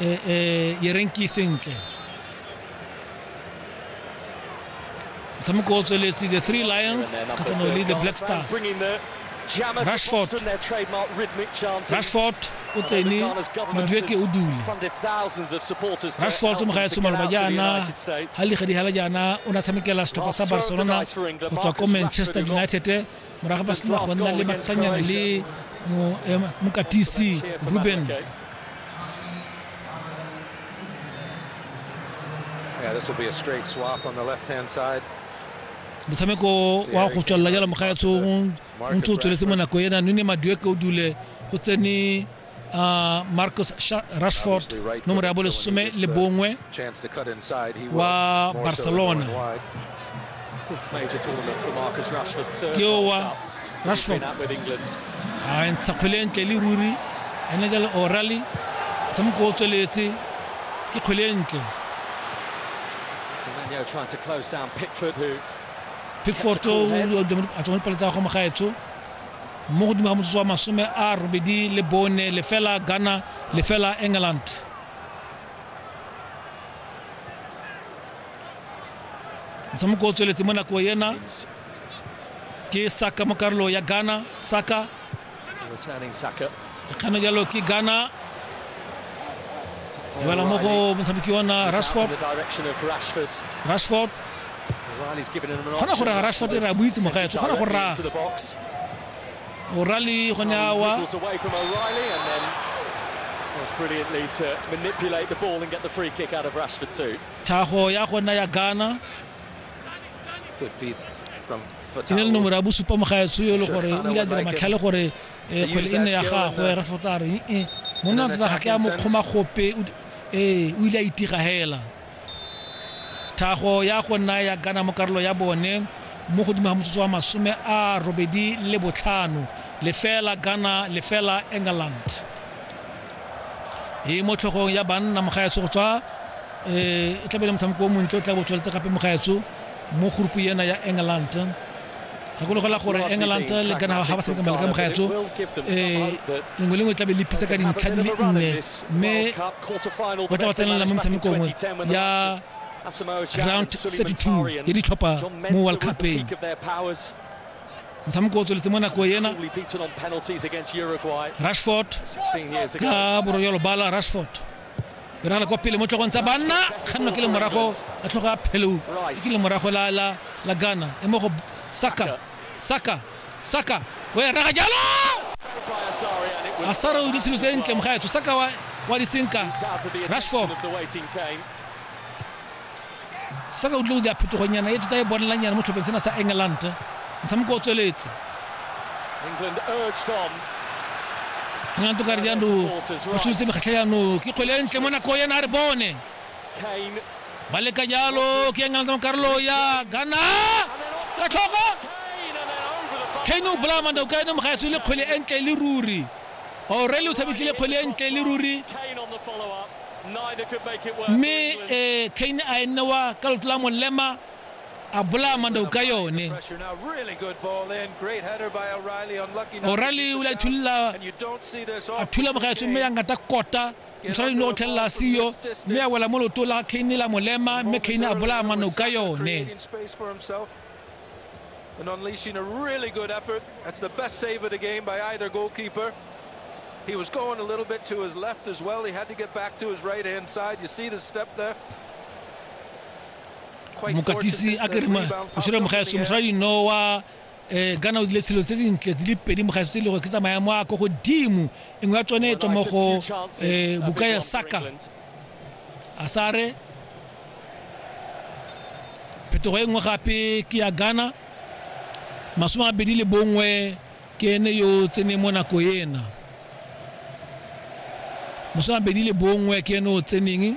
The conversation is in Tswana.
e e yerenki sentle motshameko o tsweletse the three lions kgatlhanong le the black stars rashford rashford o tsene madueke o dule rashford mo ga ya tsoma loba jaana ga ligadihela jaana o ne a tshamekela setlhopha sa barcelona go tswa ko manchester united morago ba sena go nna le matlanyana le eh, mokatisi ruben Yeah, this will be a straight swap on the left-hand side. motshameko wa go tswalela jalo mogaetsong o ntse o tsweletse mo nako ena none madueke o dule go tsene uh, Marcus Rashford nomoro ya bolesome le bongwe wa Barcelona ke owa Rashford a ntsha kgwele ntle le ruri ene jale O'Reilly tshamoko o tsweletse ke kgwele ntle Pickford o a tswang pele tsa go mogaetsho mo godimo ga motsotso wa masome a robedi le bone lefela ghana lefela england motshamoko o tsweletse mo nako ena ke saka mo karolo ya ghana saka Returning Saka. kgana jalo ke ghana e bala mo go motshameki wa rashford rashford kgona go rega rashford re a boitse mogaetso kgona go raga o'reilly gone awa was brilliantly to manipulate the ball and get the free kick out of Rashford too. Taho ya gona ya Ghana. Good feed from Tinel no mora bosupa mogaetso yo le gore o ile a dira matlhale gore ee kgwele e nne ya gagwe rafot a re ee monna wa tota ga ke a mo kgoma gope ee o ile a itiga hela thago ya go nna ya gana mo karolo ya bone mo godimo ga motsotso wa masome a robedi le botlhano lefela ghana lefela england e mo tlhogong ya banna mogaetso go tswa um e tlabe le motshameko o montle o tla bo tsweletse gape mogaetso mo groupu ena ya england gakologelwa gore england le kana ga ba tshameka maleka mogaetso um lengwe lengwe tlabe le phisa ka dintlha di le nne mme ba tla ba tsenelela mo metshamekongwe ya round 32 ya ditlhopha mo world cupeng motshameko o tsweletse mo nako ena rashford ka borogelo bala rashford e ragala kwa pele mo tlhogong tsa banna kganno ke le morago a tlhogo a phelou ke le morago la, la, la ghana e mo go saka saka saka o ya raga jalo a sara o diselo se ntle mogaetsho saka wa, wa disenka rashford sa ka utlwe go dira phetogonyana e tota e bonelanyana mo tlhopheng sena sa england motshameko o tsweletse england o kare jano o sutse mekgatlha jano ke kgwele e ntle mo nako yena a re bone ba leka jalo ke england mo karolo ya ghana ka tlhoka kane o bolaya manda o ka ene mogaetso le kgwele e ntle le ruri orele o tshamekile kgwele e ntle le ruri mme um cain a e newa ka loto la molema a bolaya mandao ka yone orale o le a thulula a thula mogaetso mme ya ngata kota ntshwara dino go tlhelela siyo mme a wela mo loto la cain la molema mme cain a bolaya manao ka yone And unleashing a really good effort. That's the best save of the game by either goalkeeper. He was going a little bit to his left as well. He had to get back to his right-hand side. You see the step there. Quite mokatisi fortunate a that kere the ma- rebound popped mošere up in mogaeso the air. mošoradi no wa eh, ghana o dile selo se sentle di le pedi mogaeso tse e lego ke tsa maemo a ko godimo engwe ya tsone e tswa mo go eh, buka ya saka a sare phetogo e nngwe gape ke ya ghana masome a bedi le bongwe ke ene yo o tseneng mo nako ena masome a bedi le bongwe ke ene o tseneng